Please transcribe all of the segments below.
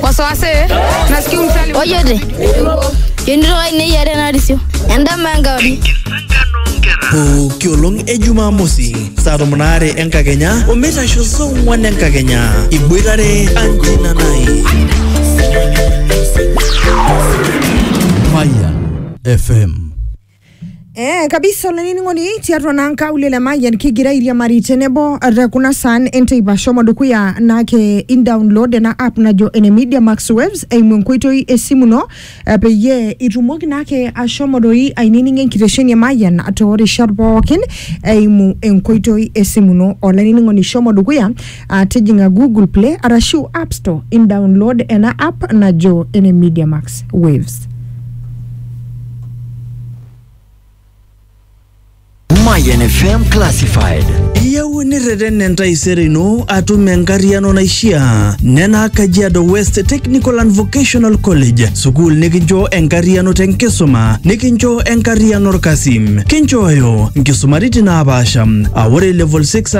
wasiwasi nasikia umsali Ojote. Yonito kai neyiare enarisio. Endama enkauri. pooki olong e jumamosi saa tomon aare enkakenya omeitasho saa ong'wan enkakenya iboitare anjina nai Fire FM. Eh, kabisa olainining'oni tiatua naa nkaulele mayian kigira airiamari tenebo te kuna saan enteipa shomo dukuya naake indownload ena app najo ene media max waves eimu enkoitoi esimu ino eh, peyie itumoki naake ashomo doi aininingo enkitesheni e mayian toorishat pookin eimu enkoitoi esimu ino olainining'oni shomo dukuya Ah, tijing'a Google Play arashu App Store indownload ena app najo ene Media Max Waves. Mayan FM Classified. Iyieu nirreten entaisere ino atum enkarriano naishiaa nena Kajiado West Technical and Vocational College, sukuul nikincho enkarriano tenkisuma, nikincho enkarriano orkasi. Kinchooyo nkisumaritin naapaasha, aa ore level 6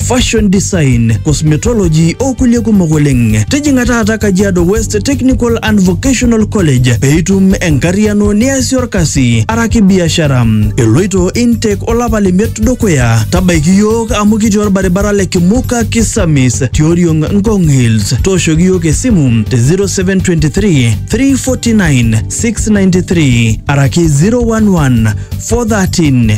fashion design, cosmetology o kulie kumok oleng. Tijing'a taata Kajiado West Technical and Vocational College pee itum enkarriano niasie orkasi araki biashara. Eloito intake olapa lemiet dukuya. Tabaiki iyiook amu kitii orbaribara le Kimuka Kisamis tioriong Ngong Hills. Tooshoki iyiook esimu te 0723 349 693 araki 011 413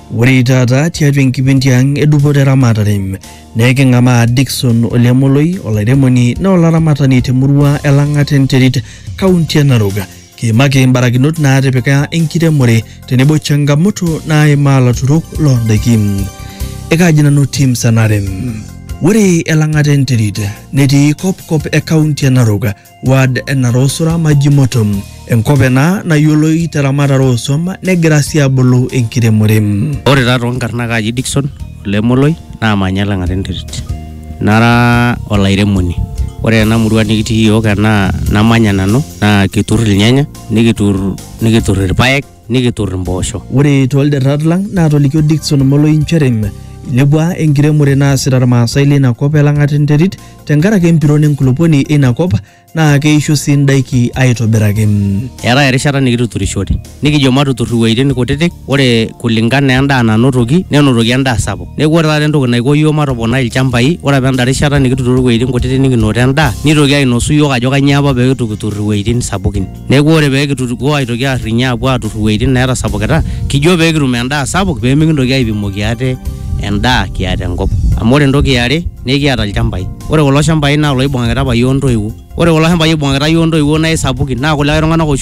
Ore taata tiatua enkipindi ang edupoto eramatare naa eking'amaa Dickson Olemoloi olairemoni naa olaramatani temurua e Lang'ata enterit kaunti e Narok. Kiimaki mbarakinot naatipika enkiremore tenebo changamoto naimaa laturok loo ndaiki. Ekaaji nanu Tim Sanarem. Ore Elang'ata enterit netii kopkop e kaunti e Narok ward e Narosura Majimoto, enkop ena nayioloi teramatare ooswam negira sii abulu enkiremore. Ore taa toonkarn naa kaaji Dickson ole Moloi naamanya Elang'ata enterit. Nara olairemoni. Ore ena murua nikitii iyiook enaa namanya nanu naa kiturr ilnyanya, nikiturr, nikiturr irpaek nikitur impoosho. Ore toolderrat lang naatolikio Dickson Moloi nchere ilepua enkiremore naasita Irmaasai leina kop e Lang'at enterit tenkaraki empiron enkulupuoni eina kop naa keisho sii indaiki aitobiraki. Eetae erishata nikituturishore nikijo matutur iwueitin kutitik ore kulingana endaa nanotoki nenotoki endaa sapuk. Neeku ore taata entoki naiko iyiook matoponai ilchambai ore apa enda rishata nikituturo iwueitin kutitik nikinoto endaa nitoki ainosu iyiook ajo kanyioo apa pee itu kitur iwueitin sapukin Neeku ore pee kitutukuo aitoki aarrinye aapuo aatur iwueitin neetasapukita, kijo pee kitum endaa sapuk pee mikintoki aipimoki ate endaa kiata enkop. Amu ore entoki e are naa ekiata ilchambai. Ore kulo shambai naa iloibung'akita apa iyiook intoiwuo. Ore kulo shambai oibung'akita iyiook intoiwuo naa aisapukin naa kulikae tung'anak oshi